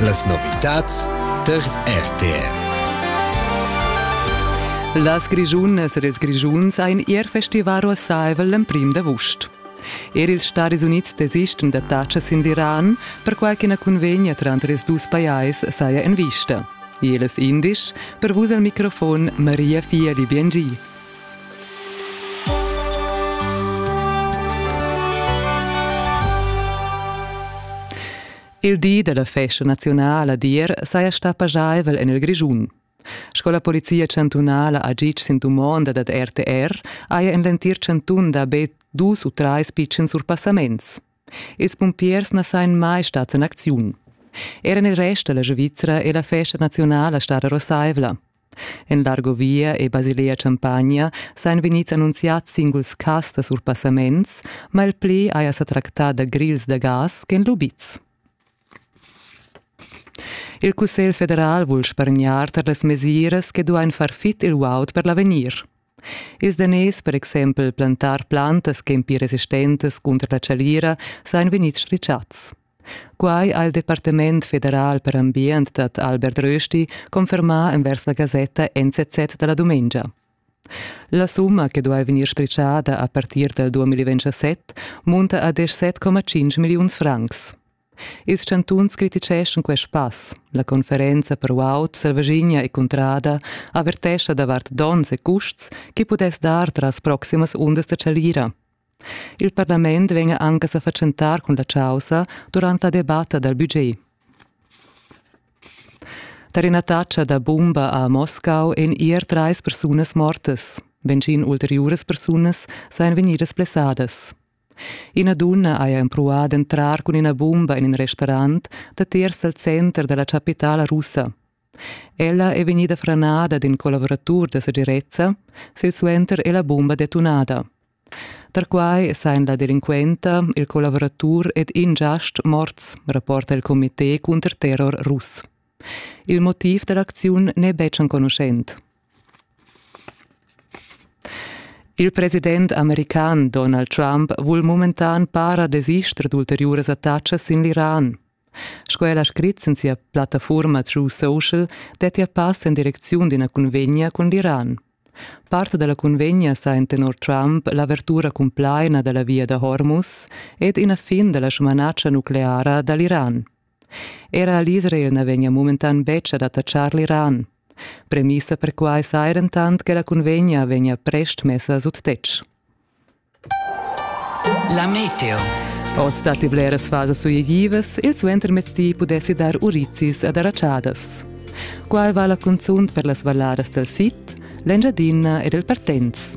Las novitads tar RTR. Las Grischunas ed ils Grischuns ein ier festivar uossaivel l'emprim d'avust. Er ils Stadis Unids desisten da tacas sin l'Iran, perquai ch'ina cunvegna tranter ils dus pajais saja en vista. Jeles indisch, per vus al microfon Maria Fieli Biengi. Il di dalla festa nazionala d'ir saja stà pajaivel en il Grischun. Sco la Polizia chantunala ha gitg sin dumonda dad RTR haja en l'entir chantun da be dus u trais pitschens surpassaments. Ils pumpiers na sajan mai stads en acziun. Er en il rest da la Svizra è la festa nazionala stada rosaivla. En l'Argovia e Basilea Champagna sajan vegnids annunziads singuls cas da surpassaments, ma il pli haja sa tractà da grils da gas ch'èn lubids. Il Cussegl federal vul spargnar tar las mesiras che duain far fit il guaud per l'avegnir. Ils daners per exempel plantar plantas ch'en pli resistentas cunter la chalira sain vegnids ritschats. Quai ha il Departament federal per ambient dad Albert Rösti confermà envers la gasetta NZZ da la dumengia. La summa che duai vegnir strichada a partir dal 2027 munta a 17,5 milliuns francs. Ils chantuns criticheschan quest pass. La conferenza per uaut Selvaschina e Cuntrada avertescha davart donns e custs che pudess dar tras proximas undas da chalira. Il parlament vegn anche a fatschentar cun la causa durant la debatta dal budget. Tar ina taccia da bumba a Moscau èn ier trais persunas mortas. Benzin ulteriuras persunas sajan vegnidas blessadas. Ina dunna haja empruà d'entrar cun ina bumba en in restaurant datiers dal center da la chapitala russa. Ella è vegnida franada d'in collavuratur da segirezza, silsuenter è la bumba detunada. Tar quai sajan la delinquenta, il collavuratur ed in giast morts, rapporta il comité cunter terror russ. Il motiv da l'acziun n'è betg enconuschent. Il president american Donald Trump vul mumentan para desister d'ulteriuras attacas sin l'Iran. Sco el ha scrit sin sia plattafurma True Social, dettia pass en direcziun d'ina cunvegna cun l'Iran. Part da la cunvegna sa en tenor Trump l'avertura cumplaina da la via da Hormuz ed ina fin da la sumanatscha nucleara da l'Iran. Era l'Israel na vegnia mumentan betg ad attaccar l'Iran. Premissa per quai saja dentant che la cunvegna vegnia prest messa sut tetg. La meteo. Oz datti bleras fasas suitivas, il suentermetti pudessi dar urizis ad arratschadas. Quai vala cunzunt per las valladas dal sid, l'Engiadina ed il Partenz.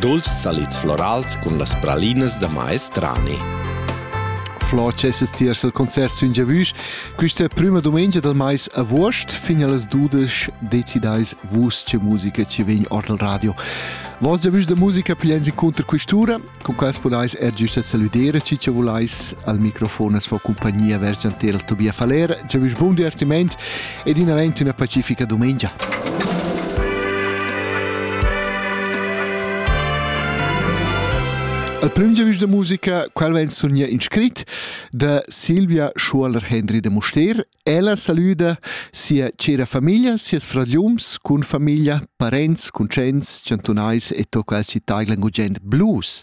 Dolce salids florals cun las pralinas da maestrani. Flo cesses tiers al concert sün giavüsch. Quista prüma dumengia del mais avuost fin allas dudesch decidais vus che musica ci vegn ord al radio. Vos giavüsch de musica pigliens inconter quistura, con quas podais er giusta saludere ci che volais al microfon as fa compagnia vers Giantel Tobia Faller. Giavüsch bun divertiment ed in avent üna pacifica dumengia. Al prüm giavüsch da musica, qual vain sogna in scrit da Silvia Schuoler-Hendry de Muster. Ella saluda sia cera famiglia, sias fragliums cun famiglia, parents, conscients, chantunais e to quals ci taiglan gugent blues.